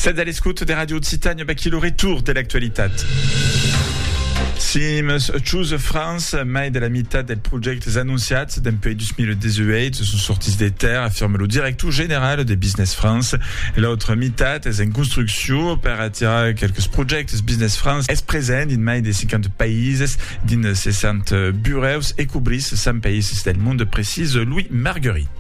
Sètz a l'escòt de Radio Occitània, baquí lo retour de l'actualitat. Sims Choose France, mai de la meitat dels projèctes anunciats dempuèi 2018 son sortits de terre, afirme lo director general de Business France. L'autra meitat es en construcció per atirar quelques projèctes. Business France es present dins mai de 50 païses, dins 60 burèus e cobrís 100 païses del mond, precisa Louis Marguerit.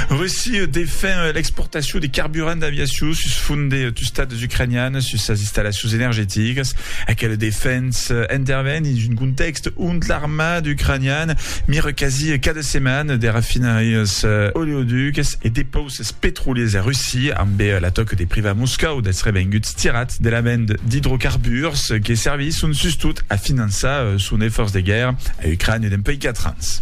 Russie defen l'exportacion de carburant d'aviacion sus font de tustats ucranians sus sas installacions energeticas. Aquela defensa interven dins un contèxt ont l'armada ucraniana mira quasi cada setmana de rafinarias, oleoducs e depauses petroliers a Russia, ambe l'atòca de privar Moscòu dels revenguts tirats de la venda d'idrocarburs que servisson sustot a finançar son esfòrç de guèrra a Ucrània dempuèi 4 ans.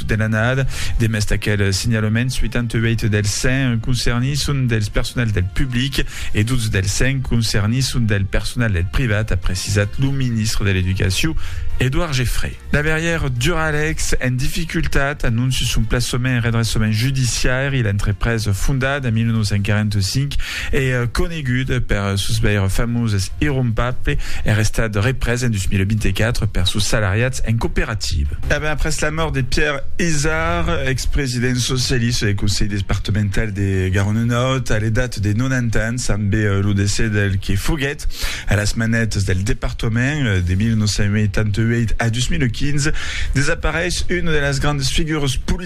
De l'annada, demest d'aquel signalement, 88 dels 100 concernits son dels personals del public e 12 dels 100 concernits son del personal del privat, a precisat lo ministre de l'Educacion, Edouard Geffray. La verrièr Duralex en dificultat anonci son plaçament en redressament judiciaire. L'entrepresa, fondada en 1945, E conegut per sos veire famoses Irumpable, es restat représ en 2024 per sos salariats en cooperativa. E ben après la mòrt de Pierre Izard, ex-president socialista del Conselh Departemental de Garonne-Nòrd, a l'edat de 90 ans, ambe lo decès del que foguèt a las manètas del departament de 1988 a 2015, desapareish una de las grandes figures politicanas